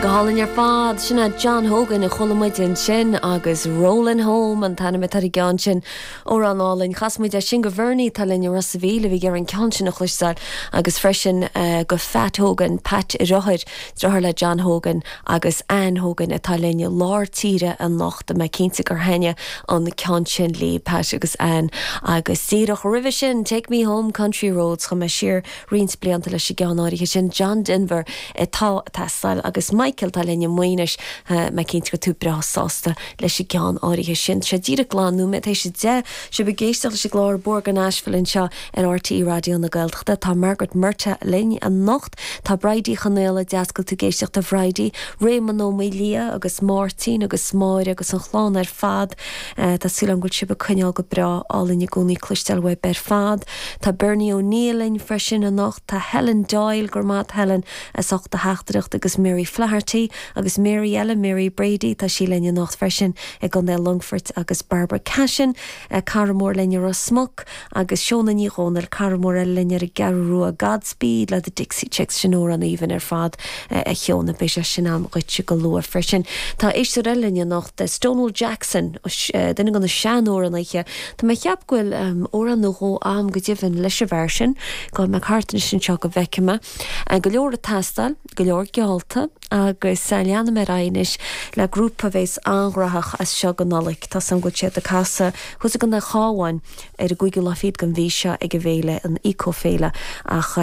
Go hálainn ar fad, sin é John Hogan a chuala muid ansin agus Rollin' Home an t-ainm atá ar an gceann sin. Amhrán álainn. Chas muid é sin go Bhernie, atá linn i Ros a' Mhíl, a bhí ag iarraidh an ceann sin a chloisteáil agus freisin go Phat Hogan, Pat a dheartháir, deartháir le John Hogan agus Ann Hogan atá linn i lár tíre anocht. Tá mé cinnte gur thaitnigh an ceann sin le Pat agus Ann. Agus díreach roimhe sin, Take Me Home, Country Roads, chuaigh mé siar, roinnt blianta leis an gceann áirithe sin, John Denver, atá ag teastáil agus Michael, atá linn i Maínis, tá mé cinnte go bhfuil tú breá sásta leis an gceann áirithe sin. Tá sé díreach dhá nóiméad théis a deich, sibh ag éisteacht leis an gclár Bóthar go Nashville anseo ar RTÉ Raidió na Gaeltachta. Tá Margaret Murtagh linn anocht, tá Bridie Chonfhaola, deas go bhfuil tú ag éisteacht a Bhridie, Réamonn Ó Maoildhia agus Máirtín agus Máire agus an chlann ar fad. Tá súil agam go bhfuil sibh ag coinneáil go breá, álainn i gcónaí cloisteáil uaibh ar fad. Tá Bernie O'Neill linn freisin anocht. Tá Helen Doyle, go raibh maith agat Helen, as ucht do theachtaireacht agus Mary Flaherty agus Mary eile, Mary Brady, tá sí linn anocht freisin i gContae Longfoirt agus Barbara Cashin, cara mór linn i Ros Muc agus Shona Ní Dhomhnaill, cara mór eile linn ar an gCeathrú Rua, God Speed le The Dixie Chicks, sin amhrán aoibhinn ar fad a Sheona, beidh sé sin agam dhuitse go luath freisin. Tá éisteoir eile linn anocht, Stonewall Jackson, duine de na sean-amhránaithe, Tá mé ag ceapadh go bhfuil amhrán nó dhó agam go deimhin leis an bhfear sin. Gabhfaidh mé thart anois anseo go bhfeicfidh mé. Go leor ag teastáil, go leor geallta agus leanfaidh mé ar aghaidh anois le grúpa a bheas an-ghraitheach as seo go Nollaig. Tá a fhios agam go bhfuil siad ag casadh thuas i gContae an Chabháin ar an gcúigiú lá fichead den mhí seo ag an bhféile, an Eco-Féile, ach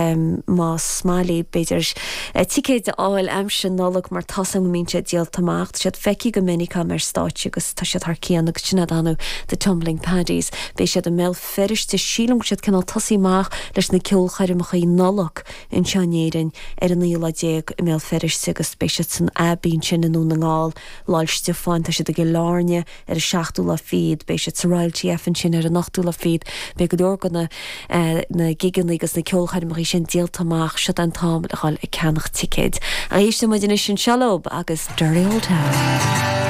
más maith libh b'fhéidir ticéid a fháil aimsir Nollag mar tá a fhios agam go mbíonn siad díolta amach. Tá siad feicthe go minic agam ar stáitse agus. Tá siad thar cionn agus sin é ar ndóigh, The Tumbling Paddies. Beidh siad i mBéal Feirste, sílim go bhfuil siad cineál ag tosaí amach leis na ceolchoirmeacha Nollag anseo in Éirinn, ar an aonú lá déag i mBéal Feirste agus beidh siad san Abbey ansin i nDún na nGall, Lá'l Stiofáin, tá siad i gCill Airne ar an seachtú lá fichead, beidh siad sa Royal TF ansin ar an ochtú lá fichead, beidh go leor go na na gigeannaí agus na ceolchoirmeachaí sin díolta amach, siod é an t-am le dhul ag ceannach ticéid. Éistfidh muid anois anseo leob agus Dirty Old Town.